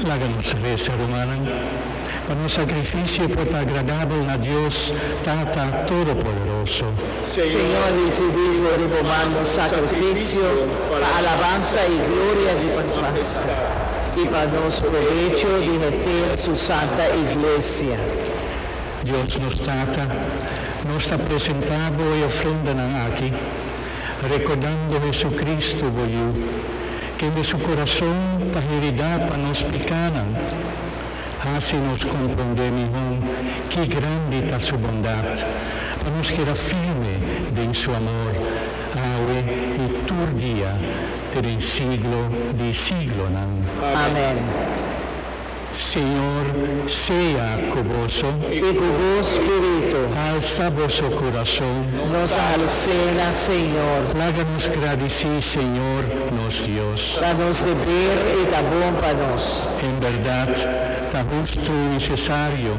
Laga nos resa, rumannan, pa nos sakrifisio por ta agradabel na Dios, Tata Todopoderoso. Señor, risibí for di bo man nos sakrifisio pa alabansa i gloria di bo nbasta, i pa nos probecho di heter su santa Iglesia. Dios nos Tata, nos ta presentá bo e ofrendanan aki, Rekordando Hesu-Kristu, bo Yu, kende su kurason ta hiridá pa nos pikánan, hasi nos komprondé mihón ki grandi ta Su bondat, pa nos keda firme den Su amor, awe i tur dia te den siglo di siglonan. Amén. Señor sea cu boso. Y cu bo spiritu. Alsa boso curason. Nos alcena, Señor. Laga nos gradici, Señor nos Dios. Pa nos deber y ta bon pa nos. En berdad, ta hustu y necesario.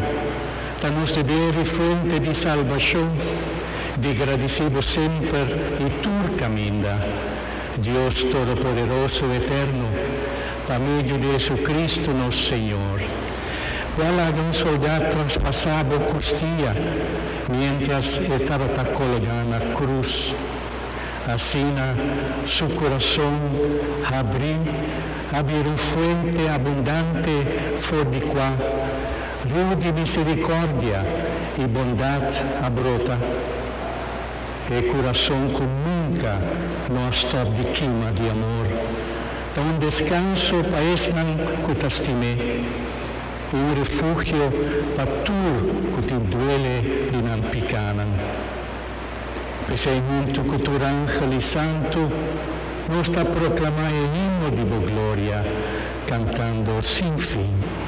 Ta nos deber y fuente di salbacion. Di gradici bo semper y tur caminda. Dios Todopoderoso Eterno. Pa medio di JesuCristu nos Señor. Bo a laga un soldá traspasá bo custia mientras e tabata colgá na cruz. Asina su curason habrí a bira un fuente abundante for di cua riu di misericordia i bondad a brota, e curason cu nunca no a stop di kima di amor Ta un deskanso pa esnan ku ta stim'é, i un refugio pa tur ku tin duele di nan pikánan. P'esei huntu ku tur ángel i santu, nos ta proklamá e himno di Bo gloria, kantando sin fin.